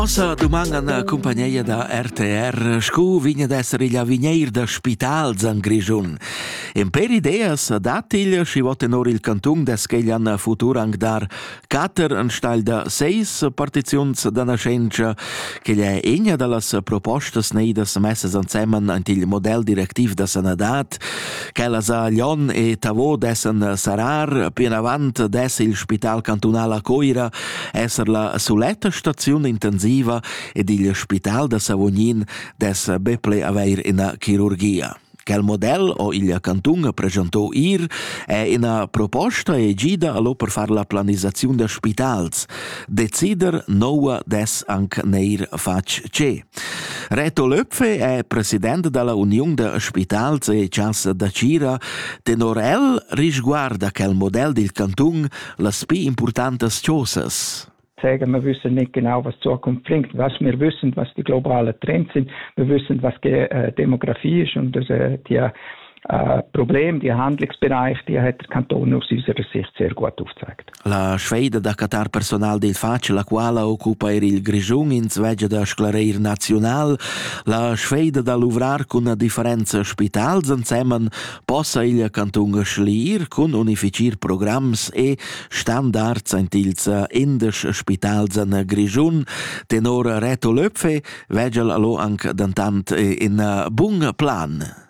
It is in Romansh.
Nossa duman an cumpagneia da RTR scu vigna d'esser igl avigneir da spitals an Grischun. En per ideas datigl schi vot tenor il cantung descheglan futur anc dar cater anstagl da seis partiziuns da naschentscha, che è egna da las propostas neidas messes ansemen ant il model directiv da sanadad Quella sa Lyon e Tavo dessan sarar, plinavant dess il Spital cantunal a Coira esser la suletta staziun intensiva ed il Spital da Savognin dess be ple avair ina chirurgia. Quel model o il cantun presentò ir è ina proposta e gida allo per far la planisaziun da spitals. Decider noua des anc neir fatg ce. Reto Löpfe è president dalla Uniun da spitals e chasa da Tgira. Tenor el risguarda quel model dil cantun las pli importantas chosas. sagen, wir wissen nicht genau, was die Zukunft bringt. Was wir wissen, was die globalen Trends sind, wir wissen, was die äh, Demografie ist und das, äh, die äh, Problem, die Handlungsbereich, die hat der Kanton aus unserer Sicht sehr gut aufgezeigt. La sfeida da catar personal dei faci, la quala occupa er il Grischun in zwegia da sclareir naziunal, la sfeida da luvrar cun a differenza spitals ansemen possa il Kanton schliir cun unificer programms e standards antilza indes spitals an Grischun, tenor Reto Löpfe, vegel allo anc dantant in bun plan.